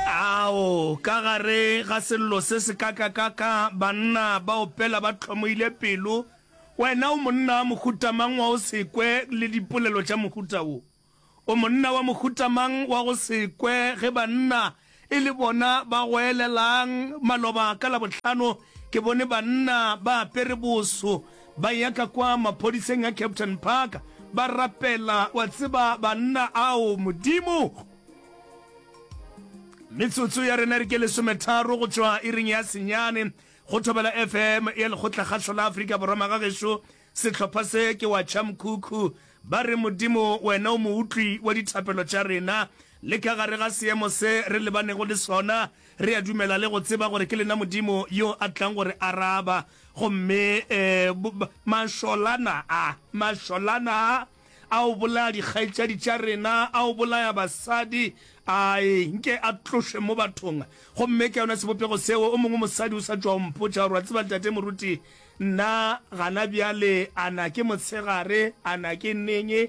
Ao, ka gare ga sello se sekakakaka, banna ba opela ba hlomoile pelo. Wena o monna wa mohuta mang wa go se kwe le dipolelo tša mohuta wo? O monna wa mohuta mang wa go se kwe ge banna e le bona ba goelelang? Maloba ka Labohlano ke bone banna ba apere boso. Ba ya ka kwa maphodiseng a Captain Park ba rapela, wa tseba banna ao, Modimo. Metsotso ya rena re ke lesometharo go tšwa iring ya senyane go Thobela FM ya Lekgotlakgašo la Afrika Borwa. Magagešo, sehlopha se ke wa Chamkhukhu ba re, Modimo, Wena o Moutlwi wa dithapelo tša rena, le ka gare ga seemo se re lebanego le sona, Re a dumela le go tseba gore ke lena Modimo yo a tlang go re araba. Gomme, bo, bo, mašolana a, mašolana a, a o bolaya dikgaetšadi tša rena, a o bolaya basadi, a e nke a tlošwe mo bathong. Gomme ke yona sebopego seo, o mongwe mosadi o sa tšwa o mpotša gore, Wa tseba, Tate Moruti, nna gana bjale, a na ke motshegare, a na ke neng?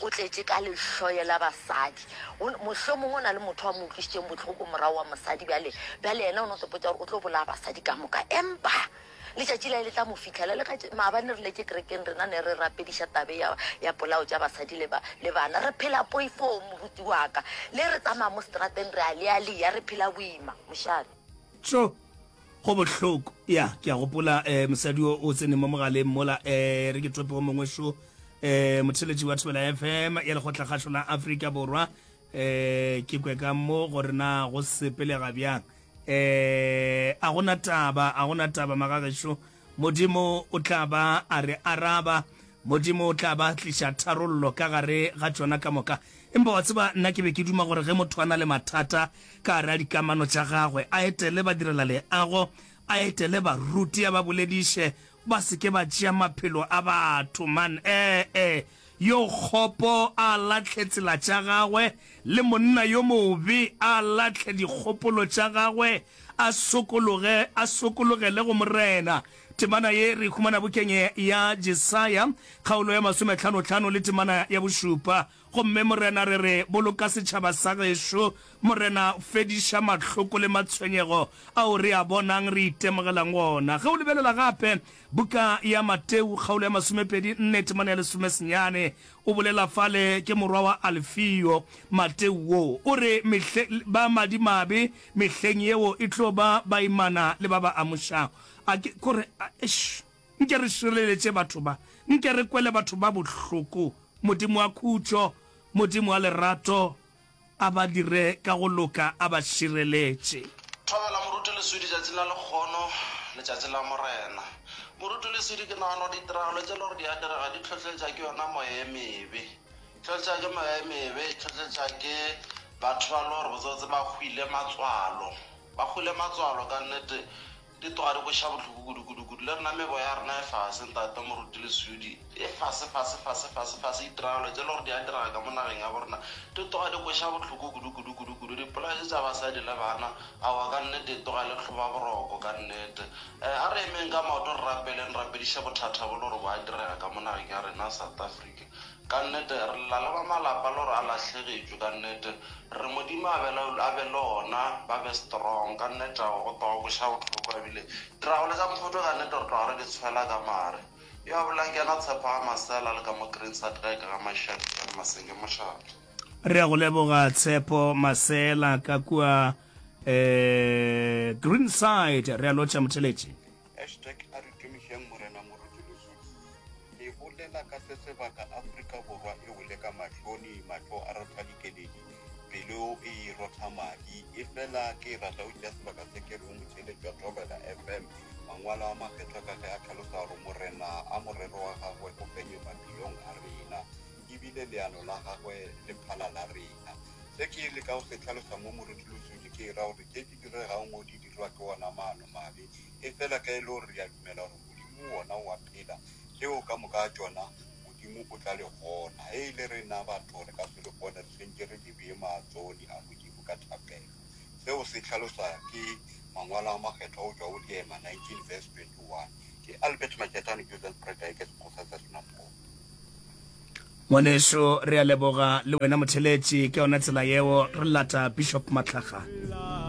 O tletše ka lehloyo la basadi. O, mohlomongwe o na le motho a mo utlwišitšeng bohloko morago wa mosadi bjale, bjale yena o no sepotša gore o tlo bolaya basadi ka moka. Empa letšatši la e le tla mo fihlela. Le ka tše, maabane re letše kerekeng, rena ne re rapediša tabe ya, ya polao tša basadi le ba, le bana. Re phela poifong, moruti wa ka. Le re tsamaya mo setrateng re a lealia, re phela boima, mošate. Tšo, Go bohloko ya ke a gopola eh, mosadi o o tseneng mo mogaleng mola eh, re ke tope o mongwe šo eh, motheletši wa thobela fm ya lekgotlakgašo la afrika borwa eh, ke kwe ka mo gore na go sepelega bjang eh, a gona taba a gona taba magagešo Modimo o tla ba a re araba. Modimo o tla ba a tliša tharollo ka gare ga tšona ka moka. Empa wa tseba, nna ke be ke duma gore ge motho a na le mathata ka gare ga dikamano tša gagwe, a etele badirelaleago, a etele baruti, a ba bolediše, ba se ke ba tšea maphelo a batho, man. Ee, ee. Yo kgopo a lahle tsela tša gagwe, le monna yo mobe a lahle dikgopolo tša gagwe, a sokologe, a sokologele go Morena. Temana ye re e humana bukeng ya Jesaya, kgaolo ya masomethanotlhano le temana ya bošupa. Gomme, Morena, re re, Boloka setšhaba sa gešo, Morena, fediša mahloko le matshwenyego ao re a bonang, re itemogelang wona. Ge o lebelela gape Buka ya Mateu, kgaolo ya masomepedi nne, temana ya lesome senyane, o bolela fale, ke morwa wa Alfio, Mateu wo. O re, Mehle, ba madimabe mehleng yeo e tlo ba baimana le ba ba amušago. A ke, ko re, a, eish, nke re šireletše batho ba, nke re kwele batho ba bohloko, Modimo wa khutšo, Modimo wa lerato, a ba dire ka go loka, a ba šireletše. Thobela moruti leswidi tšatšing la lekgono, letšatši la Morena. Moruti leswidi, ke nagana gore ditiragalo tše e le gore di a direga di hlohleletša ke yona moya e mebe. Di hlohleletša ke moya e mebe, di hlohleletša ke batho ba e le gore botsebotse ba hwile matswalo. Ba hwile matswalo ka nnete, Di tloga di go ša bohloko kudu-kudu-kudu. Le rena meboya ya rena e fase, Ntate Moruti le Sudi. E fase, fase, fase, fase, fase. Ditiragalo tše e le gore di a direga ka mo nageng ya bo rena di tloga di go ša bohloko kudu-kudu-kudu-kudu. Dipolao tše tša basadi le bana, aowa ka nnete e tloga e le tlhobaboroko ka nnete. Eh, a re emeng ka maoto re rapeleng, re rapediše bothata bo le gore bo a direga ka mo nageng ya rena South Africa. Ka nnete, re lla le ba malapa lore a lahlegetšwe, ka nnete. Re Modimo a be, a be le ona, ba be strong, ka nnete. Ao, go tloga boša bohloko, a bile. Dirago le ka mokgotho, ka nnete, re tloga re di tshwela ka mare. Yo a bolelang ke yena tshepo ga masela, le ka mo Greenside ge e ka ga Mashadi ka Masenge, mošate. Re ya go leboga Tshepo Masela ka kua, eh, Greenside. Re a lotšha, Motheletši. Hashtag A re tumišeng Morena Moruti Losoding e bolela ka se sebaka Afrika Borwa e wele ka mahloni, mahlo a rotha dikeledi, pelo e rotha madi. Efela ke e rata go tšea sebaka se ke reng Motšheletši wa Thobela FM mangwalo a makgethwa ka ge a tlhalosa gore Morena a morero wa gagwe o fenye maphelong a rena e bile leano la gagwe le phala la rena. Se ke leka go se tlhalosa mo Moruti Losodi ke e ra gore tše di diregago mo di dirwa ke wona maano mabe, efela ka e le gore re a dumela gore Modimo wona o a phela, tšeo ka moka ga tšona Modimo o tla le kgona. Ge e le rena batho, re ka se le kgone, re swentše re lebee maatšoni a Modimo ka thapelo. Seo se hlaloswa ke Mangwalo a Makgethwa go tšwa go Leema 19 verse 21. Ke Albert Majeta, New Zealand Spruit Tigers, Xhosa sa Sena Paul. Ngwanešu re a leboga le wena motheletši ka yona tsela yeo re lata Bishop Matlakgale.